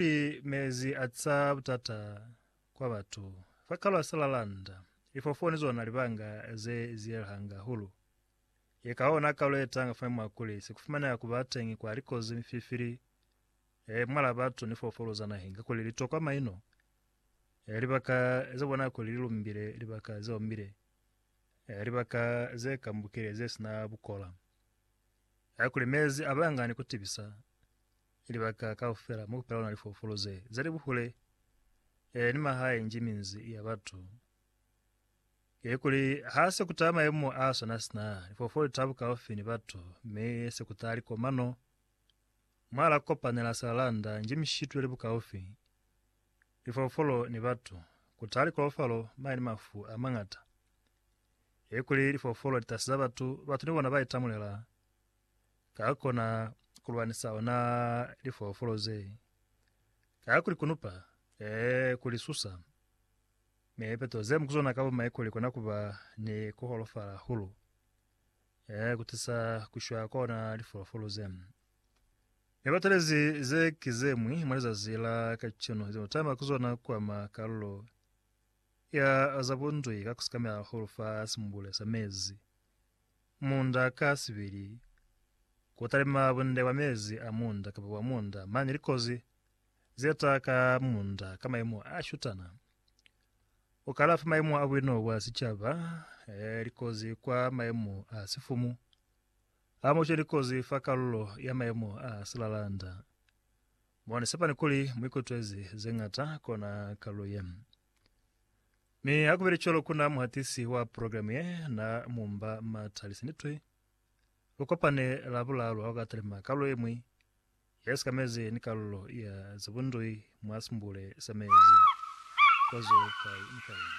Ki mezi a tisa butata kwa batu. Fa kalwa sela landa, lifofo ni zona libanga ze zielhanga hahulu. Ye kaona kalu ye tanga fa mwa kuli se kufumaneha ku ba teñi kwa likozi, mififili, e mwala batu ni foofolo za naheng kakuli li tokwa maino, e libaka ze bona kuli li lumbile, libaka ze omile, e libaka ze kambukile ze sina bukola. Kakuli mezi a banga ni ku tibisa, Ki libaka kaufela mo kupela luna lifoofolo ze za li buhule e, ni mahae nji minzi ya batu ye, kuli ha se ku taha maemo a swana sina, lifoofolo li taha bukaufi ni batu, mi se ku taha likomano mwa la kopanela silalanda nji mishitwe li bukaufi, lifoofolo ni batu, ku taha likolofalo mane ni mafu a mañata, ye kuli lifoofolo li tahasiza batu, batu ni bona ba itamulela ka kona ku lwanisa ona lifoofolo ze, ka ku li kunupa, ee, ku li susa. Mi lipeto ze mu ku zona ka bumaiko li kona ku ba ni ku holofala hahulu, ee, ku tisa ku shwa kwa ona lifoofolo ze. Mi batu le ze, ze ki ze ñwi mwa lizazi la kacenu ze mu tama ku zona ku ama kalulo ya za bunzwi ka ku sikamela hahulu fa simbule sa mezi Munda ka sibili, ku talima bunde bwa mezi a munda kapa bwa munda mane likozi ze ta ka munda ka maimo a shutana. Ku kalafa maimo a buino bwa sicaba, likozi kwa maimo a sifumu, hamošo ni likozi fa kalulo ya maimo a silalanda. Mo ni sepani kuli mu ikutwezi ze ngata kona kalulo ye. Mi ha kubile cwalo kuna muhatisi wa programe ye na mumba mata lisinitwi. Lu kopane Labulalu ha ukatalima kalulo yemwi ye sikamezi ni kalulo ya zibundwi mwa simbule sa mezi kwa zo kai ni kai.